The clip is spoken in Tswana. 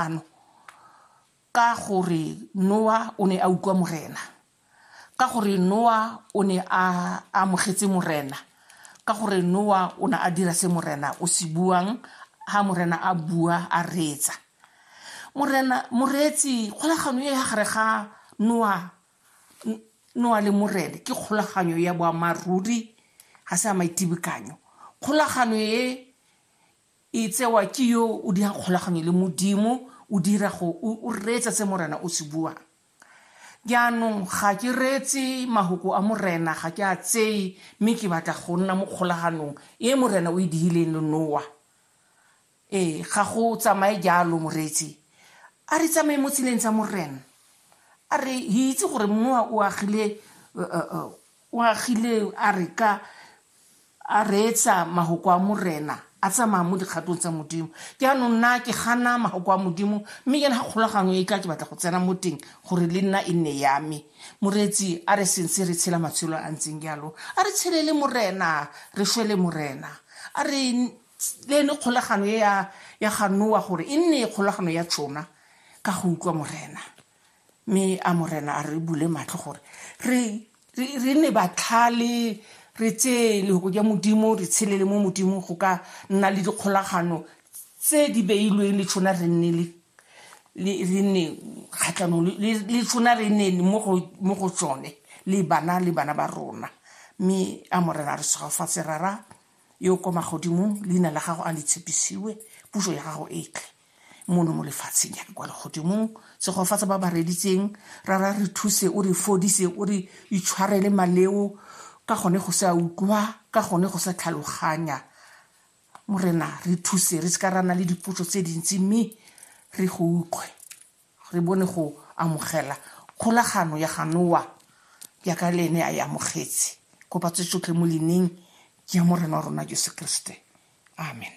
ano ka gore noa o ne a utlwa morena ka gore noa o ne a amogetse morena ka gore noa o ne a dira se morena o se buang ha morena a bua a reetsa morena moreetsi kgolagano e ya gare ga noa noa le morena ke kgolaganyo ya boammaaruri ga se ya maitibekanyo kgolagano e E tsewa ke yo o dirang kgolaganyo le Modimo, o dira go, o, o reetsa se Morena o se buang. Jaanong, ga ke reetse mahoko a Morena, ga ke a tseye, mme ke batla go nna mo kgolaganong e Morena o e dihileng le Noa. Ee, ga go tsamaye jalo, moreetsi. A re tsamaye mo tseleng tsa Morena. A re, re itse gore Noa o agile, uh, uh, uh, O agile a re ka a reetsa mahoko a Morena a tsamaya mo dikgatong tsa Modimo. Jaanong nna ke gana mahoko a Modimo mme jaana ga kgolagano e tla ke batla go tsena mo teng gore le nna e nne ya me. Moreetsi a re sentse re tshela matshelo a ntseng jalo a re tshele le Morena re shwe le Morena. A re le ene kgolagano e ya ya ga Noa gore e nne kgolagano ya tšona ka go utlwa Morena. mme a morena a re bule matlho gore re re ne batlhale re tseye lehoko ja modimo re tshele le mo modimo go ka nna le dikgolagano tse di beilweng le tshwana re nne le re nne kgatlhanong le tshwana re nne mo go tsone le bana le bana ba rona mme a morena re segofatse rara Yo o kwa magodimong, leina la gago a le tshepisiwe, puso ya gago e tle mono mo lefatsheng jaaka kwa legodimong. Segofatsa ba ba reditseng, rara re thuse, o re fodise, o re itshwarele maleo, ka gone go sa utlwa, ka gone go sa tlhaloganya. Morena, re thuse, re se ka ra nna le dipotso tse dintsi, mme re go utlwe. Re bone go amogela kgolagano ya ga Noa jaaka le ene a e amogetse, go batse tsotlhe mo leineng ja Morena wa rona Jesu Keresete. Amen.